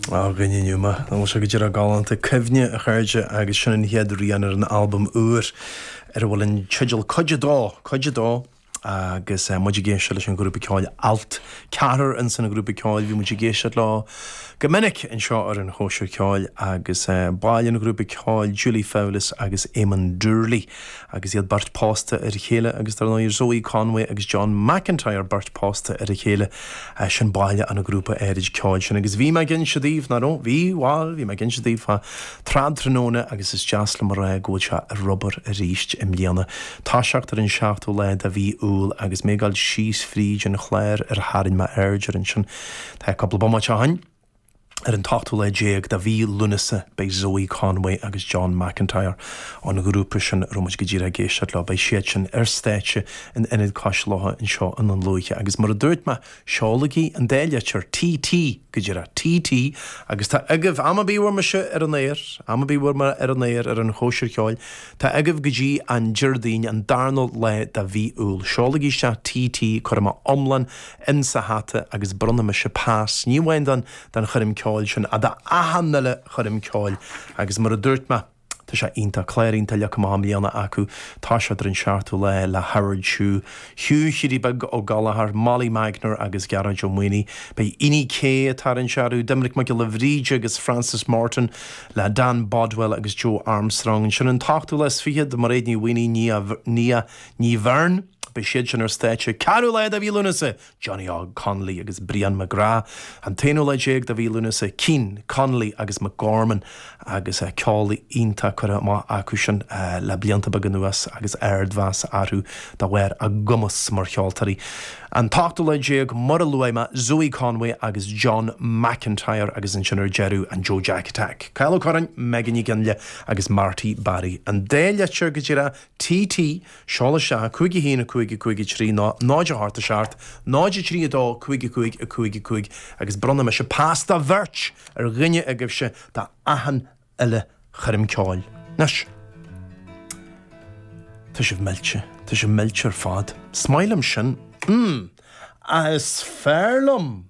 Á, ghoin in iúl mé. Nach bhfuil sé go díreach galánta? Cuimhne, a chairde, agus sin an chéad rian ar an albam úr ar a bhfuil an teideal Cuid a Dó! Cuid a Dó! Agus muid ag éisteacht leis an ghrúpa ceoil Allt, ceathrar ins an ghrúpa ceoil, bhí muid ag éisteacht leo go minic anseo ar an Chóisir Ceoil, agus baill an ghrúpa ceoil Julie Fowlis agus Éamon Doorley. Agus iad beirt pósta ar a chéile, agus dar ndóigh Zoë Conway agus John McIntyre beirt pósta ar a chéile, sin baill an ghrúpa áirid ceoil sin. Agus bhí mé ag inse daoibh, nach raibh? Bhí? Bhail, bhí mé ag inse daoibh fá Trad Tráthnóna agus is deas liom a rá go bhfuil sé ar obair arís i mbliana. Toiseacht ar an seachtú lá de mhí Iúil agus mé ag dul síos fríd an chlár ar tharraing mé aird air ansin, tá, cúpla bomaite ó shoin. Ar an t-ochtú lá déag de mhí Lúnasa beidh Zoë Conway agus John McIntyre, ón ghrúpa sin a raibh muid go díreach ag éisteacht leo, beidh siad sin ar stáitse in Ionad Cois Locha anseo i nDún Lúiche agus mar a dúirt mé, seolaigí an dá litir TT go díreach, TT agus tá agaibh, am ar bith a bhfuil mise ar an aer, am ar bith a bhfuil mé ar an aer ar an chóisir cheoil, tá agaibh go dtí an Déardaoin, an darna lá de mhí Iúil. Seolaigí isteach TT, cuirfidh mé iomlán insa hata agus bronnfaidh mise pas, ní amháin don, don choirm ceoil sin, ach do achan uile choirm ceoil agus mar a dúirt mé, tá sé iontach, clár iontach leagtha amach i mbliana acu, toiseacht ar an seachtú lá le Howard Chu, Hugh Hiúdaí Beag Ó Gallchóir, Molly Magner agus Gearóid Ó Maonaigh, beidh Inni K atá ar an searú, Doimnic Mac Giolla Bhríde agus Frances Morton le Dan Bodwell agus Joe Armstrong, ansin an t-ochtú lá is fichead, Mairéad Ní Mhaonaigh, Nia, Nia Ní Bheirn. Beidh siad sin ar stáitse 4ú lá de mhí Lúnasa, Johnny Óg Connolly agus Brian McGrath, an t-aonú lá déag de mhí Lúnasa, Keane, Connolly agus McGorman, agus ceol iontach curtha amach acu sin le blianta beaga anuas agus ardmheas orthu de bharr a gcumas mar cheoltóirí, an t-ochtú lá déag, mar a luaigh mé, Zoë Conway agus John McIntyre, agus ansin ar deireadh an Joe Jack Attack, Cathal Ó Curráin, Megan Nic Fhionnghaile agus Marty Barry. An dá litir go díreach TT. Seol isteach, a cúig, a haon, a cúig, a cúig, a trí, ná náid, a hocht, a seacht, náid, a trí, a dó, a cúig, a cúig, a cúig, a cúig, agus bronnfaidh mise pas do bheirt ar dhuine agaibhse d'achan uile choirm ceoil. Anois. Tá sibh millte. Tá sibh millte ar fad. Is maith liom sin. Mm. Ach is fearr liom.